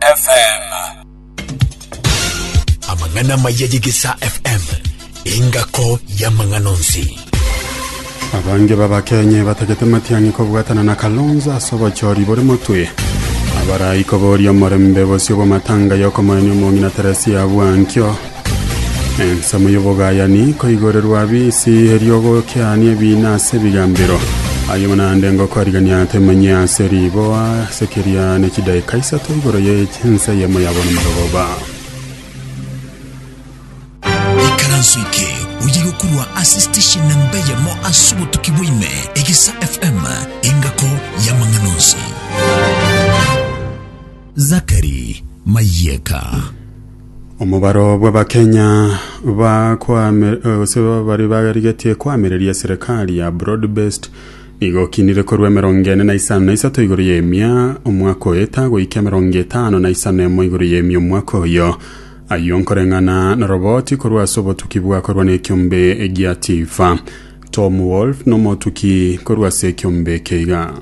FM. Amang'ana amaya y'Egesaa FM, engako y'amang'ana onsi. Abange b'Abakenya ebatagete Matiang'i kobwatana na Kalonzo ase obochori bore motwe. Abarai koboria omorembe bosio bw'amatanga y'okomoenia omong'ina Teresia Bwankio Ensemo y'obogayani nkoigorerwa bisi, erio gokiaanie ebiina ase ebigambero. Ayio naende ngokoarigania temenye ase riboa, ase keria ne chidaeka isato igoro ye ense eyemo ya borumarogoba. ikaranso eke oye gokurwa ase station namba eyemo ase obotuki bwaime egesa fm engako y'amang'ana onsi zakari mayeka Omobaro bw'Abakenya bakwame gose baria barigetie koamereria serikali ya broad based nigo okinire korwa emerongo ene na isano na isato igoro y'emia omwaka oeta goika emerongo etano na isano emo igoro y'emia omwaka oyo. Ayio nkoreng'ana noroboti korwa ase obotuki bwakorwa nekiombe gia Tifa. Tom Wolf nomotuki korwa ase ekiombe eke iga.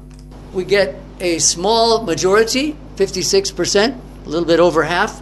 We get a small majority, 56%, a little bit over half.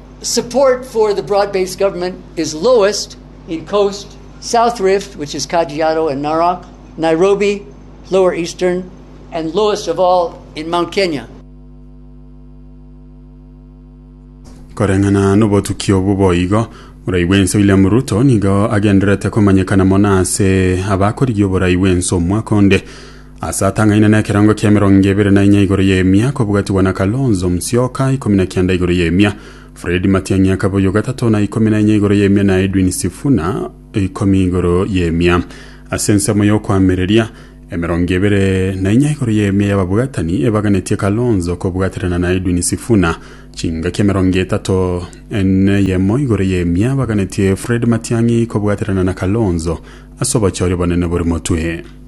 support for the broad based government is lowest in coast south rift which is kajiado and narok nairobi lower eastern and lowest of all in mount kenya Koreng'ana n'obotuki obo boigo, Morai bw'ense William Ruto nigo agendererete komanyekana mono ase abakorigia oborai bw'ense omwaka onde. Ase atang'aine nekerongo ki'emerongo ebere na inya igoro y'emia kobugatigwa na Kalonzo Musyoka, ikomi na kianda igoro y'emia, Fred Matiang'i akaba oyogatatoo na ikomi na inya igoro y'emia na Edwin Sifuna ikomi igoro y'emia. Ase ensemo y'okoamereria, emerongo ebere na inya igoro y'emia y'ababugatani ebaganetie Kalonzo kobugaterana na Edwin Sifuna. Chingaki emerongo etato n'eyemo igoro y'emia baganetie Fred Matiang'i kobugaterana na Kalonzo ase obochori obonene bore motwe.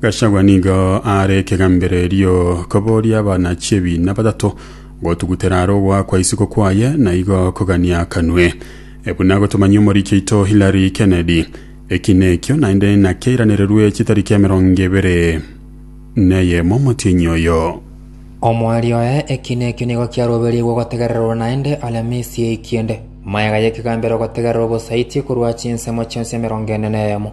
Gachagua nigo aare ekegambererio koboria abana chi'ebiina batato gotugutera are ogoakwa isiko kwaye na igo kogania akanwe. E buna gotomanyia omoriki oito Hillary Kennedy, eki nekio naende nakeiranererwe chitariki emerongo ebere neyemo omotienyi oyo. Omweri oye eki nekio nigo kiaroberigwe ogotegererwa naende aria misia ekiende. Mayega y'ekegambero ogotegererwa obosaiti korwa chinsemo chionsi emerongo ene neyemo.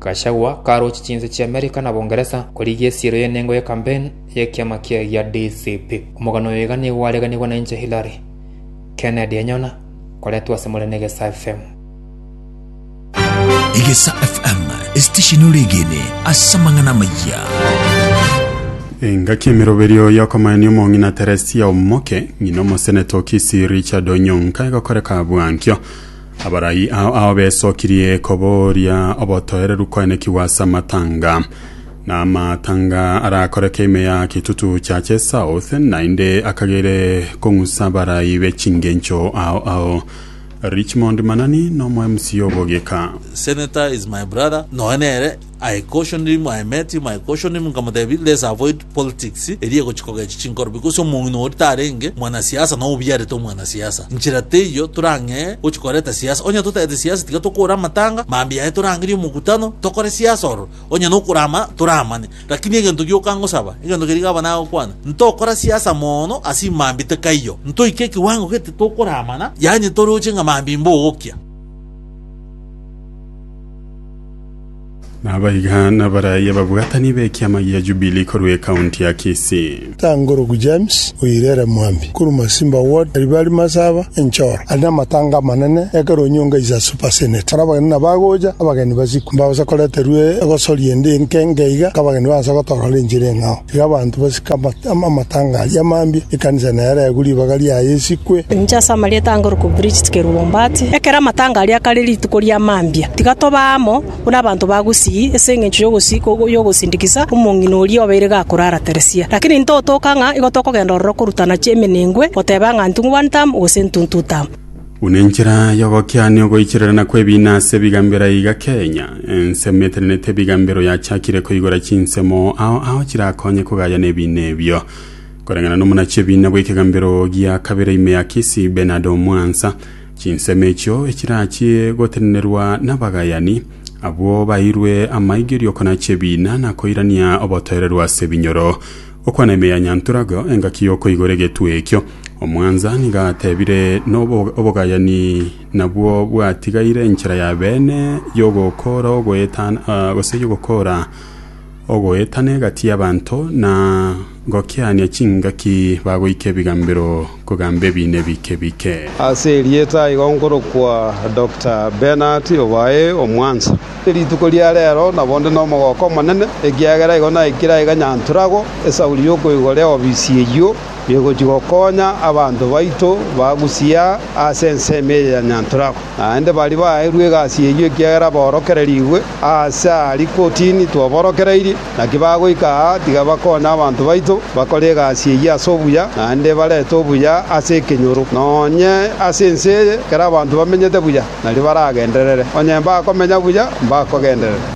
Gachagua karoche chinse chia Amerika na Bongeresa korigia esiero y'enengo ya campaign y'ekiama kiaye gia DCP. Omogano oyo iga nigo gwareganigwe na inche Hillary Kennedy Enyona koretwa ase more n'Egesa FM. Egesa FM esitesheni oregene ase amang'ana amayia. Engaki emeroberio y'okomaenia omong'ina Teresia Omoke, ng'ina omosenete o Kisii Richard Onyonka egokoreka bwankio. Abarai ao ao besokirie kobooria obotoereru koenekigwa ase amatanga, na amatanga arakoreke ime ya kitutu kia chesouth, naende akagere kong'usa abarai be chingencho ao ao. Richmond Manani nomo MC obogika. Senator is my brother nonya nere. I cautioned him, I met him, I cautioned him nkamotebia let's avoid politics eria egochia kogechwa chinkorobi gose omong'ina oria tarenge mwanasiasa nao obiarete omwanasiasa. Nchera teiyo torang'ee gochia koreta siasa. Onye totareti siasa tiga tokore amatanga, mambia yaye torangerie omokutano tokore siasa ororo. Onye nokorama toramane. Lakini egento gioka ngosaba, egento keria gaba nagokwana, ntokora siasa mono ase imambia tekaiyo. Ntoike ekiwango gete titokoramana, yaani toroche ng'a mambia imbogokia. Nabaiga nabaraai ababwatani b'ekiama gia Jubilee korwa ecounty ya Kisii. Tangorogu James oirere Mwambi korwa Masimba ward, Aribari Masaba, Enchoro, ari namatanga amanene ekero onyonga is a super senate. Ore abageni na bagocha, abageni basiku, mbagosa koreterwa egosoria ende enke nge iga, nka abageni baansa gotorora enchera eng'ao. Iga abanto basike amatanga aria amambia, ekanisa nereegwe, ribaga riaye esikwe. Inche ase amarieta ange Luke Bridget Keruombati, ekero amatanga aria akare rituko ria mambia, tiga tobe amo buna abanto ba gusii ase engencho y'ogosindikisa omong'ina oria obeire gakorara Teresia. Lakini intotoka ng'a igo tokogenda ororo korutana chiemenengwe, goteba ng'a ntung'ubani tamu gose ntuntu tamu. Buna enchera y'ogokiania ogoichererana kw'ebiina ase ebiga mbere iga Kenya, ensemo etenenete ebiga mbere oyachakire koigora chinsemo ao ao chirakonye kogaya nebiina ebio. Koreng'ana nomonachi ebiina bw'ekega mbero gia kabere ime ya Kisii Bernard Omwansa, chinsemo echio echirachie gotenenerwa nabagayani abwo bairwe amaigerio konacha ebiina na koirania obotoereru ase ebinyoro. Okwana ime ya Nyanturagha engaki y'okoigora egetwe ekio. Omwansa nigo atebire nobo obogayani nabwo bwatigaire enchera ya beene y'ogokora ogoetan ah, gose y'ogokora ogoetana egati y'abanto na gokiania chingaki bagoika ebigambero kogamba ebiina ebike bike. Ase erieta aiga nkorokwa Doctor Bernard obae omwansa. Rituko ria rero nabo nde nomogooko omonene, ekiagera igo naikire aiga Nyantrago esauri yokoigora eofisi eyio egochia gokonya abanto baito ba Gusii ase ensemo eye ya Nyantrago. Naende baria baeirwe egasi eyio ekiagera baorokererigwe ase aria kotini twaborokereirie. Naki bagoika aa tiga bakonye abanto baito bakore egasi eyio ase obuya, naende barete obuya ase ekenyoro. Nonye ase ense eye ekero abanto bamenyete buya, nario baragenderere, onye mbakomenya buya, mbakogenderera.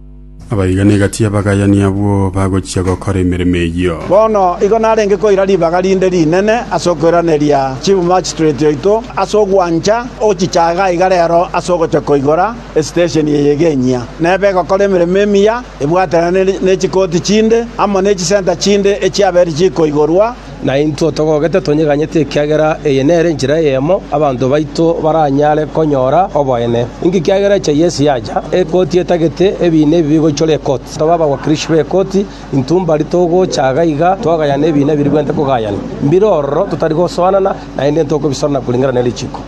Abaibani egati y'abagayani abwo bagochia gokora emeremo eyio. Bono igo narenge koira ribaga rinde rinene ase okoiraneria Chief Magistrate oito ase ogwancha ogochichaga iga rero ase ogochia koigora Esitesheni eye eg'enyia neba egokora emeremo emiya ebwatanane ne chikoti chinde amo ne chisenta chinde echiabera chikoigorwa. Naintwe togogete tonyeganyete ekiagera eye nere enchera eyemo abanto baito baranyare konyora oboene. Inki kiagera echa y'ense yacha, ekoti etagete, ebiina ebi bigoichora ekoti. Toba abagwakirishi b'ekoti, intwe mbari togocha iga iga twagayana ebiina birigwente kogayana. Mbire ororo totari gosoanana, naende intwe okobisorana korengera ne richiko.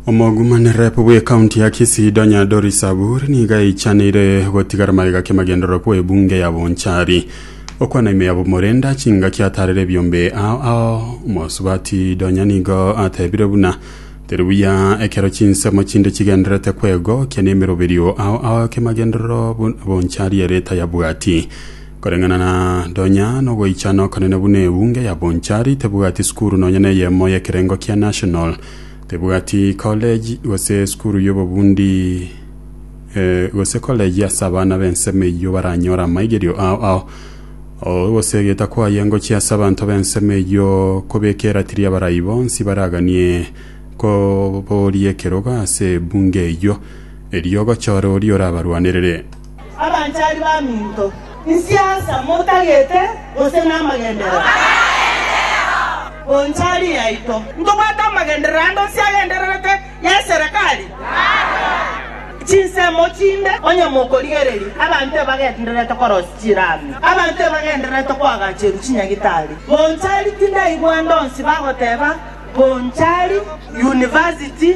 Omogumani rep bw'ekaunti ya Kisii Donya Doris Saburi nigo aichaneire gotigara magega ki'amagendererwa kwa ebunge ya Bonchari okwana ime ya Bomorenda chingaki atarire ebiombe ao ao omosubati Donya nigo atebire buna teri buya ekero chinsemo chinde chigendererete kwegokia nemeroberio ao ao ki'amagenderero buna Bonchari ere tayabwati Koreng'ana na Donya nogoichana okonene buna ebunge ya Bonchari tebwati sukuru nonya neyemo y'ekerengo kia National, tebwati college gose sukuru y'obobundi eh, gose college ase abana b'ensemo eyio baranyore amaigerio ao ao oh, ogosegeta kwaye ngochia ase abanto b'ensemo eyio kobeka eratiri y'abarai bonsi baraganie koboria ekerogo ase ebunge eyio, erio ogochore oria orabarwanerere. Abanchari baminto, inse asa motagete gose namagenderero? Bonchari yaito. Ntobwate amagenderero ande onsi agendererete y'eserekari? Chinsemo chinde onye mokorigereria, abanto ebagendererete korosia chirami, abanto ebagendererete koagacheru chinyagitari. Bonchari tindaigwande onsi bagoteba, Bonchari, university.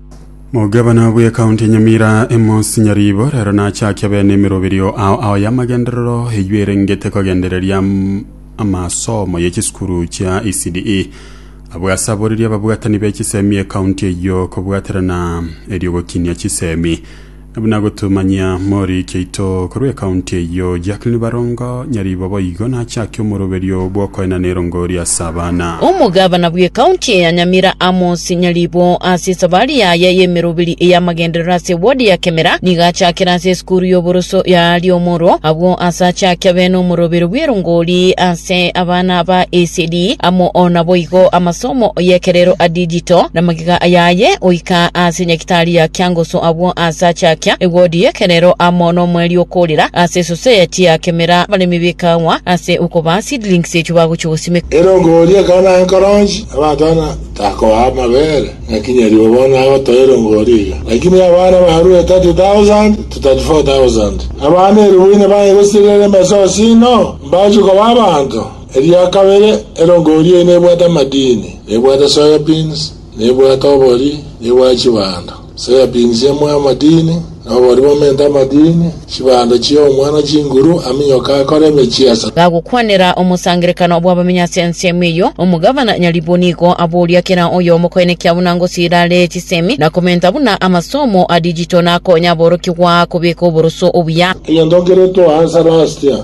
Omogabana bw'ekaunti ya Nyamira Amos Nyaribo rero nachakia bene emeroberio ao ao y'amagenderero eywo erengete kogendereria am- amasomo ye chisukuru chia ECDE abwo asaboririe ababwatani be chisemi ekaunti eywo kobwaterana eriogokinia chisemi Buna gotomanyia Mori kiaito korwa ekaunti eyio, Jacqueline Barongo, nyaribo boigo nachake omoroberio bw'okoena n'erongori ase abana. Omogabana bw'ekaunti ya Nyamira Amos Nyaribo ase esabari yaye y'emeroberi ey'amagenderero ase ewodi ya Kemera nigo achakire ase esukuru y'oboroso ya Riomoro abwo ase achake abe n'omoroberio bw'erongori ase abana ba ECD amo naboigo amasomo y'ekerero a digital namagega yaye goika ase Nyagitaria kia ngoso abwo aase achakia egodi y'ekerero amo nomweri okorira ase esuse ya chiakemera, abaremi b'ekaagwa ase okobaa seedlings echio bagochia gosimeka. Ere okoboria ekona enkoronchi, abatana takoa amabere, naki nyaribo bono agotoa erongo oria iga. Lakini abana barue e thirty thousand to thirty four thousand, abana elifu ine baye gosiria ere emesa osino, mbachie koba abanto. Eria kabere, erongo oria ine ebwate amadini, na ebwate soya beans, Nebwate obori, nebwate chibando. Sayapini siamue amadini, na obori bomente amadini, chibando chiomwa na chinguru, aminyoke akore emechiesa. Gagokwanera omosangererekano bw'abamenyi ase ensemo eyio, omogavana nyaribwo nigo aboria kera oyomo koenekia buna ngosiira are chisemi na komenta buna amasomo a digital nakonya aborokigwa kobeka oboroso obuya. Egento nkere toa ase Lastia.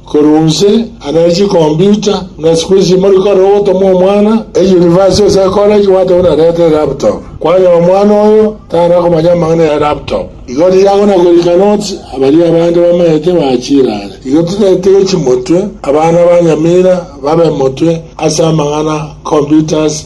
Korwa onse anare chikomputa, ng'a siku echi mori kore ogotoma omwana eyunivasiti gose ekoregi gwate buna reta elaptop. Kwanyora omwana oyo tara komanya amang'ana ya laptop, igo riria agona goika notes abaria abande bamaete bachirare. Igo tiretege chimotwe abana ba nyamira babe motwe ase amang'ana computers,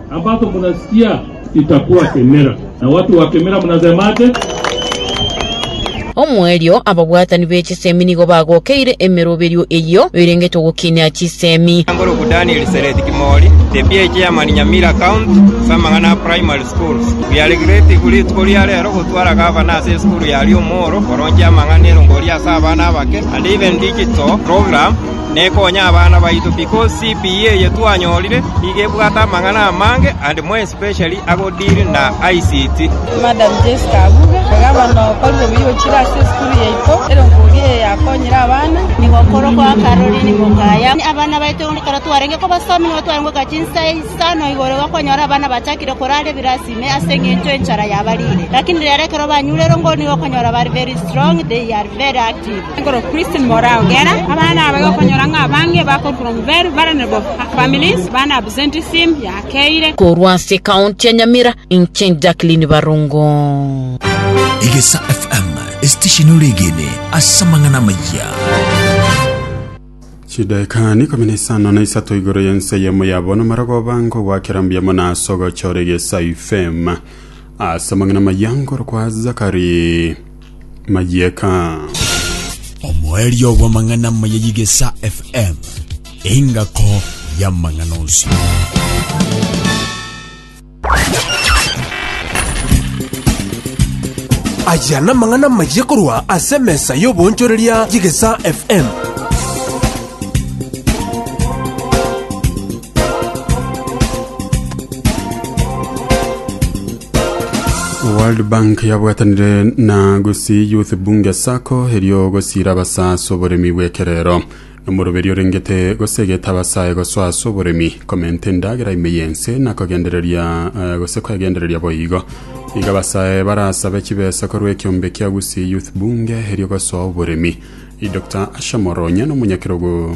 Ambato munasikia, itakuwa kemera, na watu wa kemera munasema ate? Omoerio, ababwatani be chisemi nigo bagokeire emeroberio eyio erengete ogokinia chisemi. Ngoroku Daniel Sereti Kimori, the PH Chairman Nyamira County Samang'ana Primary Schools. We are grateful rituko ria rero gotwara Gavana ase esukuru yaria omworo koronchia amang'ana erongori ase abana abake and even digital program. Nekonye abana baito because CPE eye twanyorire nigo ebwate amang'ana amange and more especially ago deal na ICT. Madam Jesse Kabuga, Gava nokorire buya ochire ase esukuru yaito, erongoria eye yakonyire abana. Nigo okoro kwa Caroline Mukaya. Abana baito ekero twarenge kobasomi nigo twarenge goika chinsa isano igoro iga kwanyora abana bachakire korara ebirasi ime ase eng'encho enchara yabarire. Lakini rero ekero banyure erongori nigo okonyora bari very strong, they are very active. Korwa ase ekaunti ya Nyamira, inche Jacqueline Barongo. Egesa FM, esitesheni ore egene ase amang'ana amayia. chidaeka nikomi na isano na isato igoro yense eyemo yabo namarogo bango gwakera mbuya mono ase ogochora egesa ifm ase amang'ana maya ngoro kwa zakari mayieka. Omoerio bw'amang'ana amaya y'Igesa FM, engako y'amang'ana onsi. Aya namang'ana amaya korwa ase emesa y'obonchoreria y'Igesa FM. world bank yabwatanire na gusii youth bunge sako erio gosiira abasaa ase oboremi bw'ekerero omoroberi orengete gosegeta abasae gosoa ase oboremi komenta endagera ime y'ense na kogendereria eh, gose kwegendereria boigo iga abasae barasabe chibesa korwa ekiombe kia gusii youth bunge erio gosoa oboremi dr asha moronya n'omonyakerogo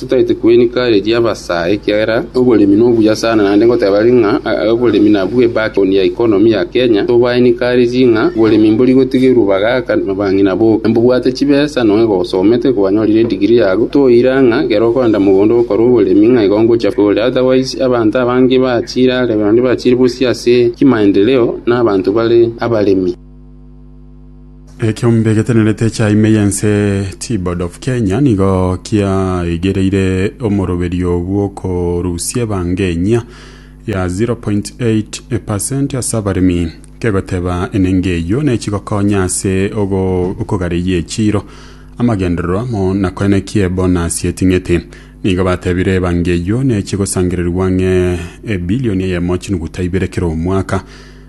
Totaete kwenika eria abasae, ekiagera oboremi nobuya sana, naende ngoteba ere ng'a oboremi nabwo ebaki on ya economy ya Kenya, tobaenika are ri ng'a oboremi mbori gotigerwa bagaaka abang'ina boka. Mbobwate chibesa, nonye gosomete, kwanyorire edigiri yago, toira ng'a ekero okorenta mogondo ogokora oboremi ng'a igo ngochia kore, otherwise abanto abange bachiire are, naende bachiire bosio ase chimaendeleo na abanto bare abaremi. Ekiombe egetenerete ekia ime y'ense T-Board of Kenya nigo kiaigereire omoroberio bw'okorusia ebanga enyia ya 0.8% ase abaremi kegoteba enengo eyio nechigokonya ase ogo- okogareyia echiro amagenderero amo na koena ekie bonus eting'ete nigo batebire ebanga eyio nechigosangererigwa ng'e ebilioni eyemo chinuguta ibere kera omwaka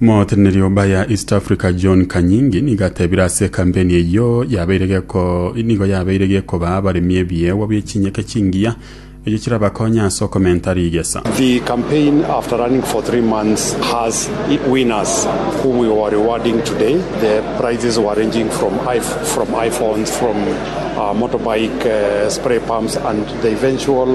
Moteneneri o Bayer East Africa John Kanyingi nigo atebire ase ekampeni eyio yabeire geko nigo yabeire gekoba abaremi ebiegwa bie chinyeke chingiya erio chirabakonye ase okomenta rigesa. The campaign, after running for three months, has winners whom we were rewarding today. The prizes were ranging from, iPh- from iPhones, from uh, motorbike uh, spray pumps, and the eventual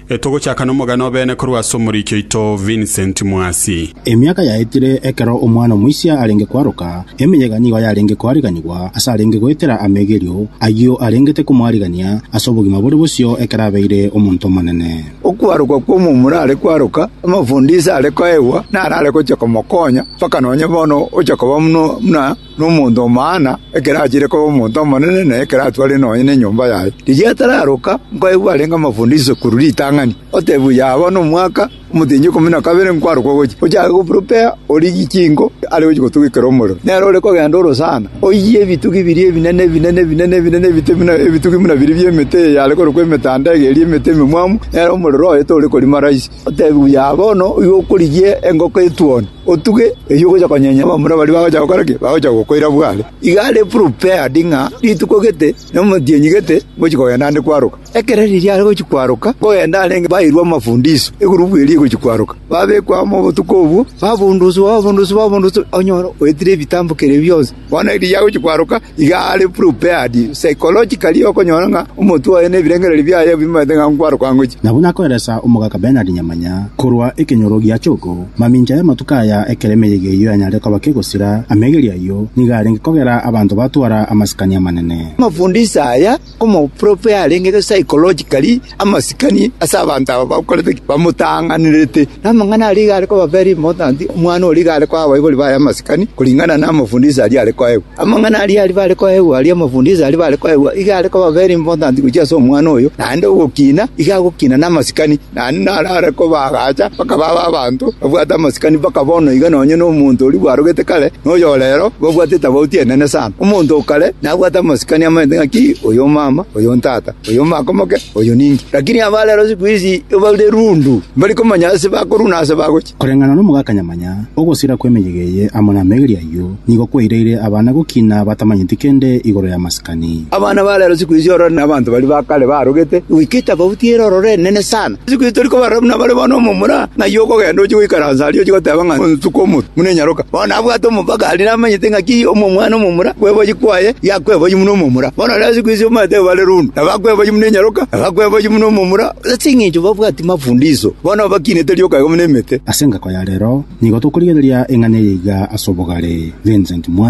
Togochaka nomogano obeene korwa ase omoriki oito Vincent Mwasi. Emiaka yaetire ekero omwana omoisia arenge kwaroka, emeyega nigo yarenge koariganigwa ase arenge goetera amegerio ayio arengete komoarigania ase obogima bore bosio ekero abeire omonto omonene. Okwarokwa kw'omomura are kwaroka, amafundisho are koegwa narare gochia komokonya mpaka nonye bono ogochia koba buna nomonto omwaana, ekero achiire koba omonto omonene, na ekero atware nonya nenyomba yaye. Rigiya atararoka, nkoegwa arenge amafundo isekuru ritang'ani, otebiwa, Yaba nomwaka omotenyi ikomi na kabere nkwarokwa gochia, ochake koprepare origie chinko are gochia gotogekera omorero. Nere ore kogenda ore sana, oyie ebitugi biria ebinene, ebinene, ebinene, ebinene, ebite buna ebitugi buna biria bi'emete eye yare korokwa emetanda ege eria emete ememwamu, nere omorero oye tore korima rahisi. Otebiwa, Yaba ono, igo okorigia engoko etuoni. Otuge eyio ogocha konyenya abamura baria bagocha gokora ki? Bagocha gokoira bware. Iga are prepared ng'a rituko gete na omotienyi gete ngochia kogenda ande kwaroka. Ekero riria are gochia kwaroka, kogenda arenge bairwe amafundiso, egurupu eria egochia kwaroka. Babekwa amo obotuko obwo, babunduswa, babunduswa, babunduswa, onyore oetire ebitambo keria bionsi. Bono erigiya agochia kwaroka, iga are prepared psychologically okonyora ng'a omotwe oye na ebirengererio biaye bimoete ng'a nkwaroka ngochia. Na buna akoeresa omogaka Bernard Nyamanya korwa ekenyoro gia Chogo, mamincha y'amatuko aya ekero emeyega eyio yanyarire koba kegosira, amegerio ayio nigo arenge kogera abanto batwara amasikani amanene. Amafundisho aya Omopropo yarenge psychologically amasikani ase abanto aba bakorete ki? Bamotang'anerete. Na amang'ana aria iga are koba very important, omwana oria iga are koa abaibori baye amasikani kuringana na amafundisho aria are koegwa. Amang'ana aria aria bare koegwa aria amafundisho aria bare koegwa iga are koba very important gochia ase omwana oyo, naende ogokina iga agokina na amasikani. Naende narare kobaagacha, bakaba abe abanto babwate amasikani mpaka bono iga, nonye nomonto oria bwarogete kare, na oyo ore rero babwate etabauti enene sana. Omonto o kare nabwate amasikani amanyete ng'aki, oyo omama, oyo ontata, oyo omaka omoke, oyo ninki. Lakini aba rero siku ici baure rundu, mbari komanya ase bakorwa na ase bagochia. Koreng'ana nomogaka nyamanya, ogosira kw'emeyega eye amo namegeri ayio nigo kwaireire abana gokina batamanyeti kende igoro y'amasikani. Abana ba rero siku ici orore nabanto baria ba kare barogete goika etafauti ere orore enene sana. Siku ici tori kobarora buna bare bono omomura, ng'ai okogenda ochie goikaransa aria ochie goteba ng'a onsuka omotwe buna enyaroka. Bono nabwate omopaka aria namanyete ng'a ki omwana omomura kweboyia kwaye yakweboyia buna omomura. Bono rero siku ici omaete koba rero onde, nabo akweboyia buna enyaroka, nabo akweboyia buna omomura. Ase engencho babwati mafundisho, bono babakinete rioka igoro nemete. Ase engako ya rero nigo tokorigereria eng'ana eye iga ase obogare. Vincent Mwasi.